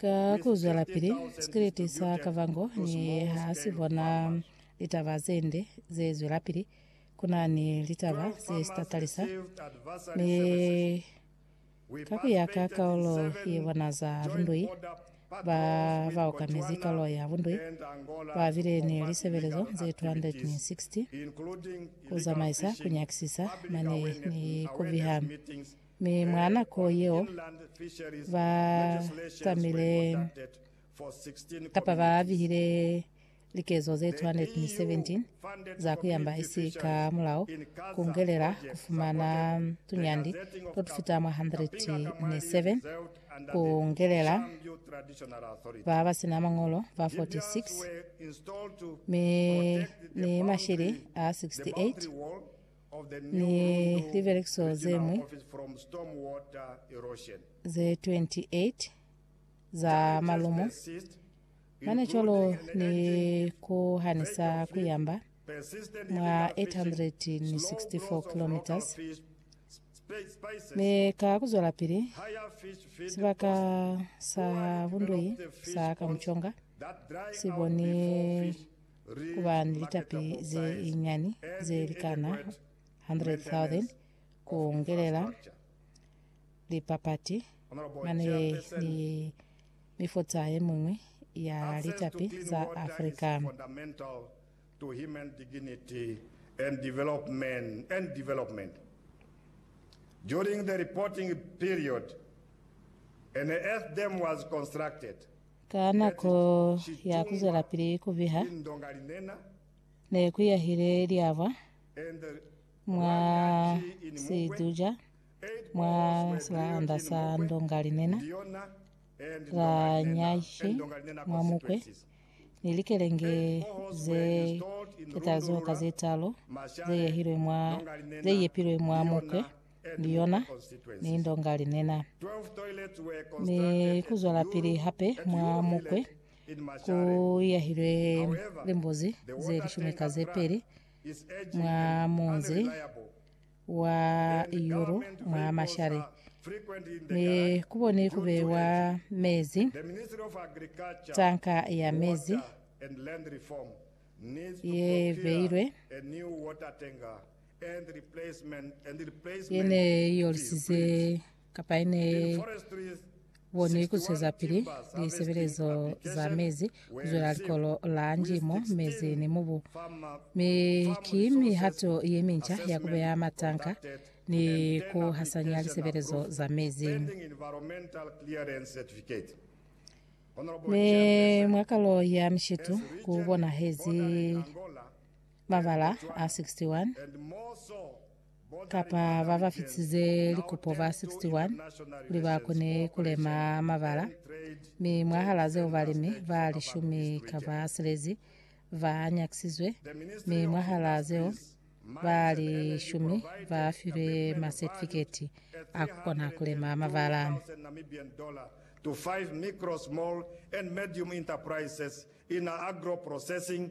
Ka ku zwelapili, sikeleti sa Kavango ni ha si bona litaba ze nde ze zwelapili. Ku na ni litaba ze si tatalisa, mi ka ku ya ka kaulo ye bona za bundui, ba ba okamezi kaulo ya bundui ba bile ni lisebelezo ze 260 ku zamaisa ku nyakisisa mane ni ku biha Mi mwa nako yeo, ba tamile kapa ba bihile likezo ze 217 za kuyamba isi ka mulao kungelela kufumana tunyandi totufita mwa 107 kungelela ba basina mañolo ba 46 mi ni mashili a 68 ni libelekiso ze ñwi ze 28 za malumu, mane cwalo ni ku hanisa ku yamba mwa 864 kilometres, mi ka ku zwelapili sibaka sa bundweyi sa Kamuconga si boni ku ba ni litapi ze linyani ze likana 100,000 ku ngelela lipapati mane ni mifuta ye miñwi ya litapi za Africa. Ka nako ya ku zwelapili ku biha, ne ku yahile liabwa mwa situja mwa silaanda sa ndonga linena la nyashi mwa mukwe, ni likelenge ze ketali zoka ze talu ze yepilwe mwa mukwe. ni yona ni ndonga linena ni kuzwelapili hape mwa mukwe ku yahilwe limbuzi ze lishumi ka ze peli mwa munzi wa Iyuru mwa Mashare ni kuboni kube wa mezi tanka ya mezi ye beilwe ye ne i yolisize kapa ye ne i bonwe ku zwezapili lisebelezo za mezi, ku zwela likolo la ndimo, mezi ni mubu. Mi ki mihato ye minca ya ku beya matanka ni ku hasanya lisebelezo za mezi. Mi mwa kalo ya mishitu ku bonahezi Babala a 61 kapa babafisize likupo ba 61 kuli bakone kulema mabala, mi mwahala zeo balimi ba lishumi kaba silezi banyakisizwe, mi mwahala zeo ba lishumi bafilwe masetifiketi a kukona kulema mabala. to five micro, small and medium enterprises in agro-processing